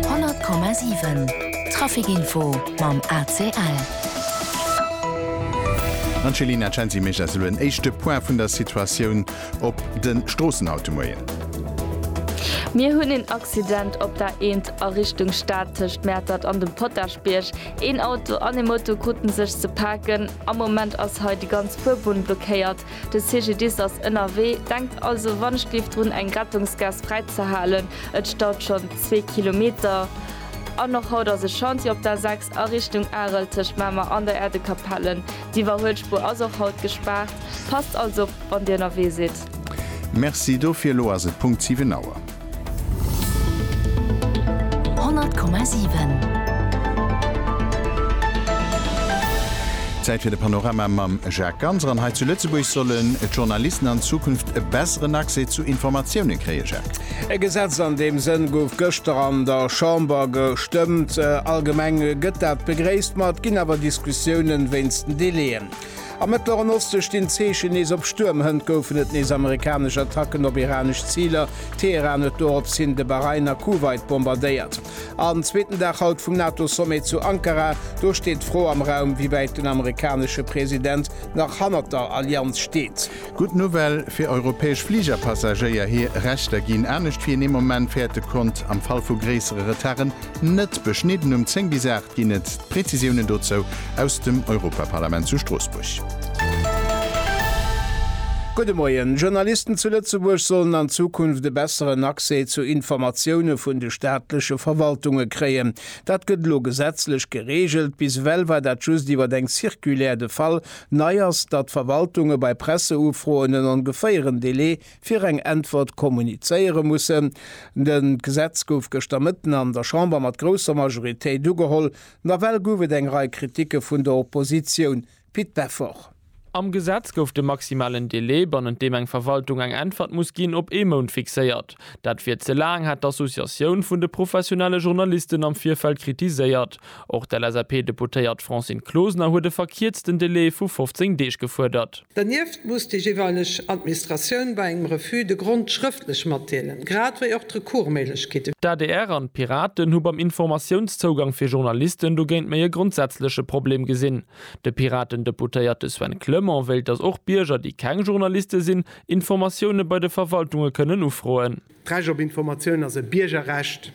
100,7 Trafic info mam ACL. Angelina Cenzi mécht eis elo en éischte Point vun der Situatioun op de Stroossen haut de Moien. Mir hunn een Accident op der A1 a Richtung Stad tëscht Mäertert an dem Potaschbierg. Een Auto an ee Moto kruten sech ze paken. Am Moment ass hei déi ganz Fuerbunn blockéiert. De CGDIS ass ënnerwee, denkt also wann ech géif drun eng Rettungsgaass fräi ze halen. Et staut schonn zwee Kilometer an och haut ass e Chantier op der 6 a Richtung Arel tëscht Mamer an der Äerdekapelle. D'Iwwerhuelspuer ass och haut gespaart. Passt also op wann dir ënnerwee sidd. Merci dofir. Elo ass et Punkt 7 Auer. Zäit fir de Panorama mam Jacques Ganser. An hei zu Lëtzebuerg sollen d'Journalisten an Zukunft e besseren Accès zu Informatiounen kréien, Jacques. E Gesetz an deem Sënn gouf gëschter an der Chamber gestëmmt. Allgemeng gëtt dat begréisst, ma et ginn awer Diskussiounen wéinst den Delaien. Am Mëttleren Oste stinn d'Zeechen nees op Stuerm. Hënt goufen et nees amerikanesch Attacken op iranesch Ziler. Teheran huet doropshin de Bahrain a Kuwait bombardéiert. An zweeten Dag haut vum NATO-Sommet zu Ankara. Do steet d'Fro am Raum, wéi wäit den amerikanesche President nach hannert der Allianz steet. Gutt Nouvelle fir europäesch Fligerpassagéier, hir Rechter ginn anescht wéi een ee Moment fäerte konnt, am Fall vu gréissere Retarden net beschnidden. Um 10 bis 8 ginn et d'Präzisiounen dozou aus dem Europaparlament zu Stroossbuerg. Gudde Moien. Journalisten zu Lëtzebuerg sollen an Zukunft e besseren Accès zu Informatioune vun de staatleche Verwaltunge kréien. Dat gëtt elo gesetzlech gereegelt. Bis ewell war dat just iwwer eng Circulaire de Fall, Nei ass, datt d'Verwaltunge bei Presseufroen en ongeféieren Delai fir eng Äntwert kommunizéiere mussen. De Gesetz gouf gëschter Mëtten an der Chamber mat grousser Majoritéit ugeholl. Nawell gouf et eng Rei Kritike vun der Oppositioun. Pit Beffort. Am Gesetz gouf de maximalen Delai, bannent deem eng Verwaltung eng Äntwert muss ginn, op ee Mount fixéiert. Dat wier ze laang, hat d'Associatioun vun de professionelle Journalisten am Virfeld kritiséiert. Och d'LSAP-Deputéiert Francine Closener huet e verkierzten Delai vu 15 Deeg gefuerdert. Dernieft muss déi jeeweileg Administratioun bei engem Refus de Grond schrëftlech matdeelen, grad wéi och d'Recours-Méiglechkeet. D'adr an d'Piraten hu beim Informatiounszougang fir Journalisten dogéint méi e grondsätzleche Problem gesinn. De Piraten-Deputéierte Sven Clement wéilt, datt och Bierger, déi keng Journaliste sinn, Informatioune bei de Verwaltunge kënnen ufroen. D'Recht op Informatioun ass e Biergerrecht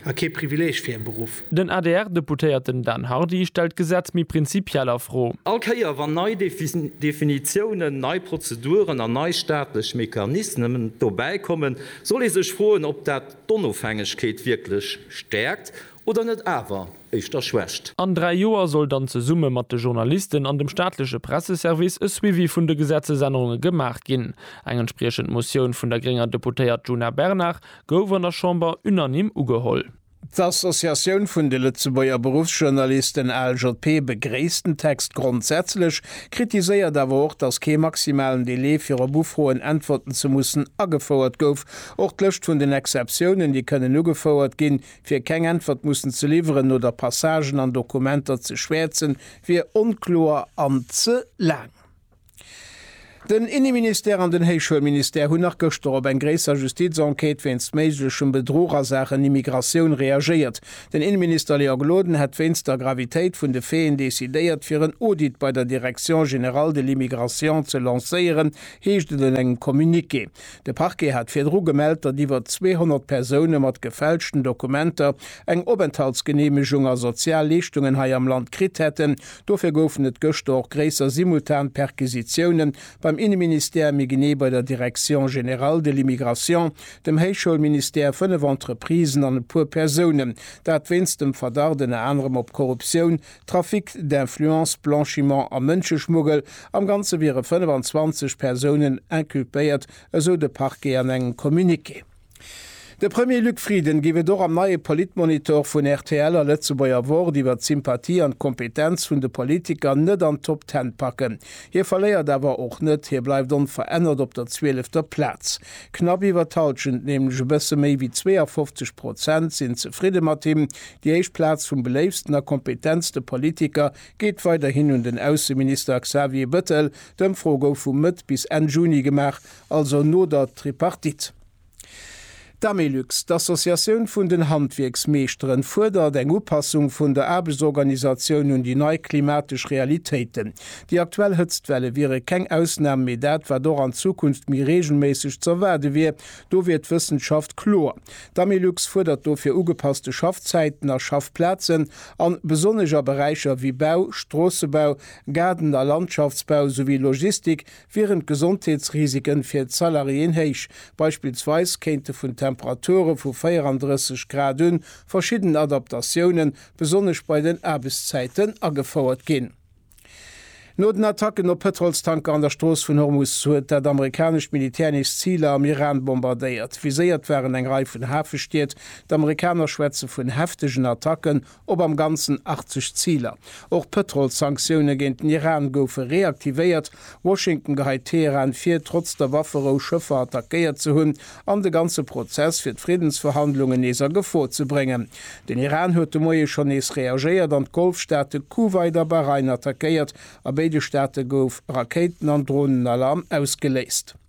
a kee Privileeg fir e Beruff. Den ADR-Deputéierten Dan Hardy stellt d'Gesetz méi prinzipiell a Fro. All Kéier wann nei Definitiounen, nei Prozeduren an nei staatlech Mechanismen dobäi kommen, soll ee sech froen, ob dat d'Onofhängegkeet wierklech stäerkt oder net awer éischter schwächt. An dräi Joer soll dann zesumme mat de Journalisten an dem staatleche Presseservice e Suivi vun de Gesetzesännerunge gemaach ginn. Eng entspriechend Motioun vun der grénger Deputéiert Djuna Bernard gouf an der Chamber unanime ugeholl. D'Associatioun vun de Lëtzebuerger Beruffsjournalisten, ALJP, begréisst den Text grondsätzlech, kritiséiert awer och, datt kee maximalen Delai fir op Ufroen äntwerten ze mussen agefouert gouf. Och d'Lëscht vun den Exceptiounen, déi kënnen ugefouert ginn, Fir keng Äntwert mussen ze liwweren oder Passagen an Dokumenter ze schwäerzen, wier onkloer an ze laang. Den Inneministère an den Héichschoulministère hunn nach gëschter op eng gréisser Justiz-Enquête wéinst méiglechem Bedruch a Saachen Immigratioun reagéiert. Den Inneminister Léa Gloden hätt wéinst der Gravitéit vun de Faiten decidéiert, fir en Audit bei der Direction générale de l'immigration ze lancéieren, heescht et an engem Communiqué. De Parquet hat virdru gemellt, datt iwwer 200 Persoune mat gefälschten Dokumenter eng Openthaltsgeneemegung a sozial Leeschtungen hei am Land kritt hätten. Dofir goufen et gëschter och gréisser simultan Perquisitioune beim Inneministère, méi genee bei der Direction générale de l'immigration, dem Héichschoulministère, fënnef Entreprisen an e puer Persounen. Dat wéinst dem Verdacht ënner anerem op Korruptioun, Trafic d'influence, Blanchiment a Mënscheschmuggel, am Ganze wiere 25 Persounen inculpéiert, esou de Parquet an engem Communiqué. De Premier Luc Frieden géif et och am neie Politmonitor vun rtl a Lëtzebuerger Wort iwwer d'Sympathie an d'Kompetenz vun de Politiker net an d'Top Ten packen. Hie verléiert awer och net, hie bleift onverännert op der zwielefter Plaz. Knapp iwwer d'Halschent, nämlech e bësse méi wéi 52 Prozent, sinn zefridde mat him, Déi éischt Plaz vum beléiftsten a kompetentste Politiker geet weiderhin un den Ausseminister Xavier Bëttel. D'Ëmfro gouf vu Mëtt bis Enn Juni gemaach, also no der Tripartite. D'Amélux, d'Associatioun vun den Handwierksmeeschteren, fuerdert eng Upassung vun der Aarbechtsorganisatioun un déi nei klimatesch Realitéiten. Déi aktuell Hëtztwelle wiere keng Ausnam, mee dat, wat och an Zukunft méi reegelméisseg z'erwaarde wier, Do wier d'Wëssenschaft kloer. D'AMILUX fuerdert dofir ugepasste Schaffzäiten a Schaffplazen an besonnesch a Beräicher wéi Bau, Stroossebau, Gaarden a Landschaftsbau souwéi Logistik wieren d'Gesondheetsrisiken fir d'Salariéen héich. Beispillsweis kéinte vun Temperature vu 34 Grad un verschidden Adaptatiounen, besonnesch bei den Aarbechtszäiten, agefouert ginn. No den Attacken op Pëtrolstanker an der Strooss vun Hormus huet dat amerikanescht Militär nees Ziler am Iran bombardéiert. Viséiert waren eng Rei vun Hafestied. D'Amerikaner schwätze vun heftegen Attacken op am Ganzen 80 Ziler. Och d'Pëtrolssanktioune géint den Iran goufe reaktivéiert Washington geheit Teheran vir, trotz der Wafferou Schëffer attackéiert ze hunn an de ganze Prozess fir d'Friddensverhandlungen nees a Gefor ze bréngen. Den Iran huet de Moie schonn nees reagéiert an d'Golfstaate Kuwait a Bahrain attackéiert. A béide Staate gouf Rakéiten an Dronenalarm ausgeléist.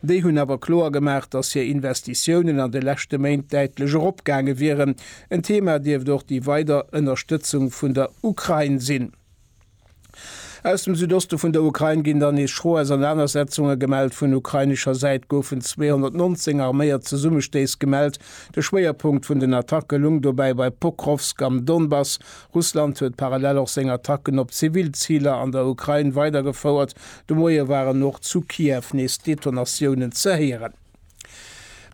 Déi hunn awer kloer gemaach, datt hir Investitiounen an de leschte Méint däitlech eropgaange wieren. En Thema dierft och déi weider Ënnerstëtzung vun der Ukrain sinn. Aus dem Südoste vun der Ukrain ginn dann nees schro Ausernanersetzunge gemellt. Vun ukrainescher Säit goufen 219 arméiert Zesummestéiss gemellt. De Schwéierpunkt vun den Attacke lung dobäi bei Pokrovsk am Donbass, Russland huet parallel och seng Attacken op zivil Ziler an der Ukrain weidergefouert. De Moie waren och zu Kiew nees Detonatiounen ze héieren.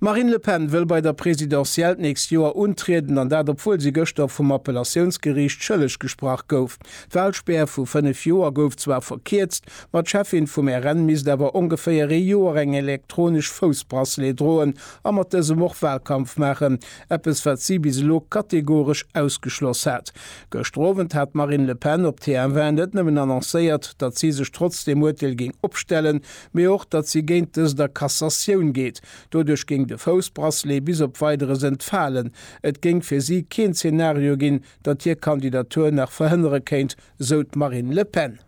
D'Marine Le Pen wëll bei der Presidentielle d'nächst Joer untrieden an dat obwuel si gëschter vum Appellatiounsgeriicht schëlleg gesprach gouf. D'Walspär vu 5 Joer gouf zwar verkierzt, ma d'Cheffin vum RN misst awer ongeféier ee Joer eng elektronesch Foussbracelet droen a mat dësem och Walkampf maachen, Eppes wat si bis elo kategoresch ausgeschloss hat. Gëschter Owend hat d'Marine Le Pen op TF1 net nëmmen annoncéiert, datt si sech trotz deem Urteel géing opstellen, mee och, datt si géint dëst a Cassatioun geet. Doduerch géing de Foussbracelet bis op Weideres entfalen. Et géing fir si keen Zenario ginn, datt hir Kandidatur nach verhënnere kéint, sou d'Marine Le Pen.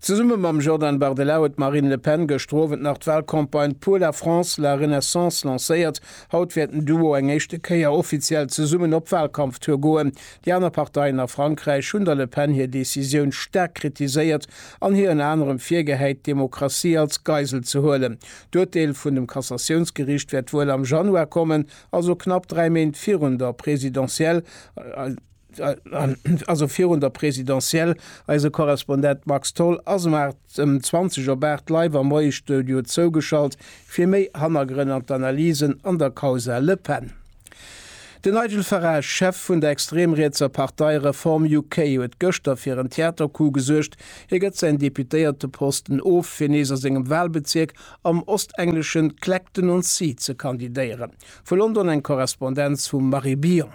Zesumme mam Jordan Bardella huet d'Marine Le Pen gëschter Owend nach d'Walcampagne Pour la France, la Renaissance lancéiert. Haut wäert den Duo eng éischte Kéier offiziell zesummen op Walkampftour goen. Déi aner Parteien a Frankräich hunn der Le Pen hir Decisioun staark kritiséiert an hir ënner anerem virgehäit, d'Demokratie als Geisel ze huelen. D'Urteel vun dem Kassatiounsgeriicht wäert wuel am Januar kommen, also knapp dräi Méint virun der Presidentielle. Also virun der Presidentielle, eise Korrespondent Max Tholl ass em 8, ëm 20 op 8 live am Moiestudio zougeschalt fir méi Hannergrënn an d'Analysen an der Causa Le Pen. Den Nigel Farage, Chef vun der extrem-rietser Partei Reform UK, huet gëschter fir en Theatercoup gesuergt, hie gëtt säin Deputéierteposten of, fir nees a sengem Walbezierk am ostengleschen Clacton-on-Sea ze kandidéieren. Vu London eng Korrespondenz vum Marie Billon.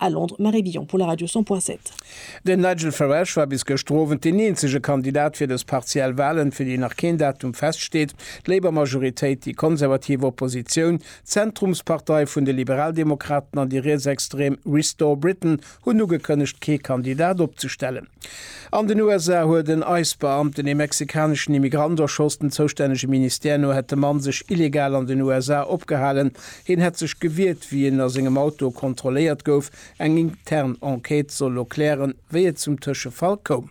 A Londres, Marie Billon pour la Radio 100 point 7. Den Nigel Farage war bis gëschter Owend deen eenzege Kandidat fir dës partiell Walen, fir déi nach keen Datum feststeet. D'Labour Majoritéit, déi konservativ Oppositioun, d'Zentrumspartei vun de Liberaldemokraten an déi rietsextrem Restore Britain hunn ugekënnegt, kee Kandidat opzestellen. An den USA huet en ICE-Beamten ee mexikaneschen Immigrant erschoss. Dem zoustännege Ministère no hätt de Mann sech illegal an den USA opgehalen, Hien hätt sech gewiert, wéi en a sengem Auto kontrolléiert gouf. Eng intern Enquête soll elo klären, wéi et zum Tëschefall koum.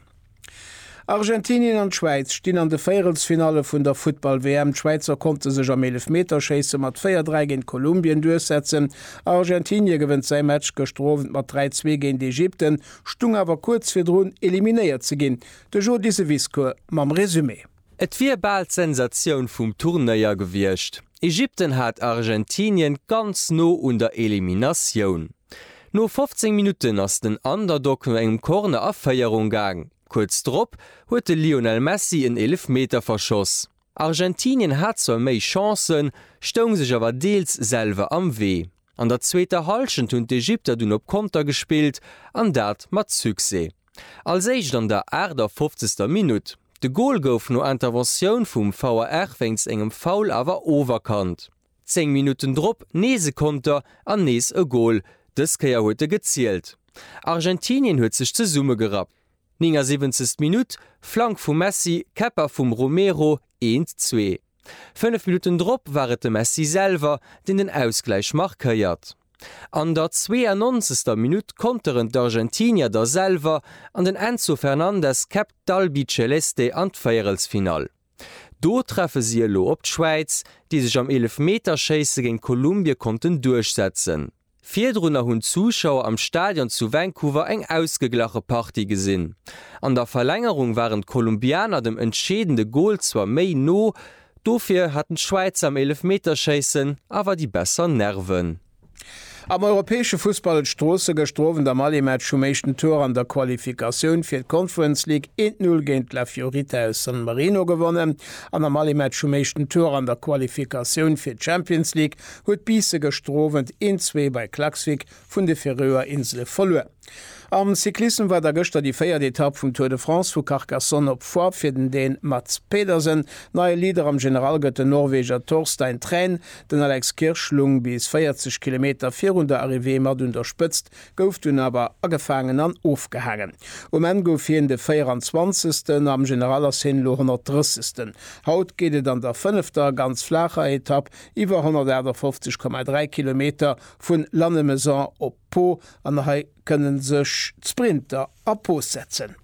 Argentinien an d'Schwäiz stinn an de Véierelsfinalle vun der Futtball-WM. D'Schwäizer konnte sech am Eelefmeterschéisse mat 4, 3 géint Kolumbien duerchsetzen. Argentinie gewënnt säi Match gëschter Owend mat 3, 2 géint Ägypten, stung awer kuerz virdrun eliminéiert ze ginn. De Jody Seviscoe mam Resumé. Et wier bal d'Sensatioun vum Turnéier gewiescht. Ägypten hat Argentinien ganz no un der Eliminatioun. No 15 Minutten ass den Underdog no engem Corner a Féierung gaang. Kuerz drop huet de Lionel Messi en Eelefmeter verschoss. Argentinien hat zwar méi Chancen, stoung sech awer deels selwer am Wee. An der zweeter Hallschent hunn d'Ägypter dunn op Konter gespillt an dat mat Succès. Als éischt an der 58. Minutt De Gol gouf no Interventioun vum VAR wéinst engem Foul awer oferkannt. Zéng Minutten drop nees e Konter an nees e Gol, dës Kéier huet e gezielt. Argentinien huet sech zesummegerappt. 79. Minutt, Flank vum Messi, Käpper vum Romero, 1, 2. Fënnef Minutten drop war et de Messi selwer, deen den Ausgläich markéiert. An der 92. Minutt konteren d'Argentinier da selwer an den Enzo Fernandez käppt d'Albiceleste an d'Véierelsfinall. Do treffe si elo op d'Schwäiz, déi sech am Eelefmeterschéisse géint Kolumbie konnten duerchsetzen. Virdrunner hunn d'Zuschauer am Stadion zu Vancouver eng ausgeglache Partie gesinn. An der Verlängerung waren d'Kolumbianer dem entscheedende Gol zwar méi no, Dofir haten d'Schwäizer am Eelefmeterschéissen awer déi besser Nerven. Am europäesche Fussball huet Stroossen gëschter Owend am Allimatch vum éischten Tour an der Qualifikatioun fir d'Conference League een d'Null géint La Fiorita aus San Marino gewonnen an am Allimatch vum éischten Tour an der Qualifikatioun fir d'Champions League huet Biisse gëschter Owend een Zwee bei Klaksvik vun de Färöer Insele verluer. Am Cyclissem war da gëschter déi véiert Etapp vum Tour de France vu Carcassonne op Foix fir den Dän Mads Pedersen. Neie Leader am General gëtt den Norweger Torstein Træn. Den Alex Kirsch lung bis 40 Kilometer virun der Arrivée mat un der Spëtzt, gouf dunn awer agefaangen an ofgehaangen. Um Enn gouf hien de 24. Am General ass hien elo 130. Haut geet et an der fënnefter, ganz flaacher Etapp iwwer 158,3 Kilometer Vun Lannemezan op Po an hei kënnen sech d'Sprinter a Pose setzen.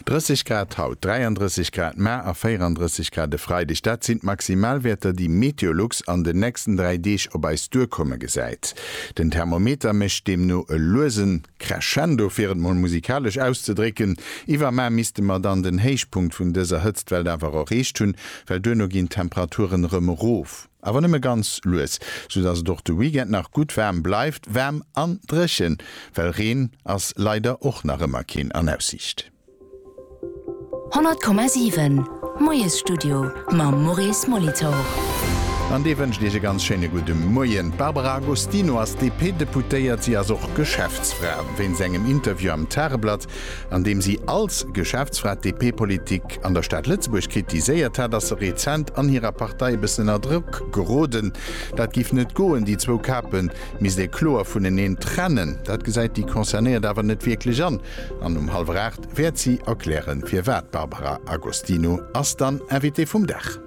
30 Grad haut, 33 Grad mar a 34 Grad e Freideg, dat sinn d'Maximalwäerter, déi Meteolux an den nächsten dräi Deeg op eis duerkomme gesäit. Den Thermometer mécht deemno e luese Crescendo, fir et mol musikalesch auszedrécken. Iwwermar misste mer dann den Héichpunkt vun dëser Hëtztwell awer erreecht hunn, well duerno ginn d'Temperaturen erëm erof. awer nëmme ganz lues, soudass et och de Weekend nach gutt waarm bleift, waarm an dréchen, well Reen ass leider och nach ëmmer keen an Aussiicht. 100,7 Moiesstudio mam Maurice Molitor. An dee wënscht Iech e ganz schéine gudde Moien. D'Barbara Agostino ass DP-Deputéiert. Si ass och Geschäftsfra. Wéinst engem Interview am Tageblatt An deem si als Geschäftsfra d'DP-Politik an der Stad Lëtzebuerg kritiséiert hat, ass se rezent an hirer Partei e bëssen ënner Drock geroden. Dat giff net goen, déi zwou Kape misst ee kloer vuneneen trennen. Dat gesäit déi Concernéiert awer net wierklech an. An um hallwer aacht wäert si erklären, firwat. D'Barbara Agostino ass dann Invitée vum Dag.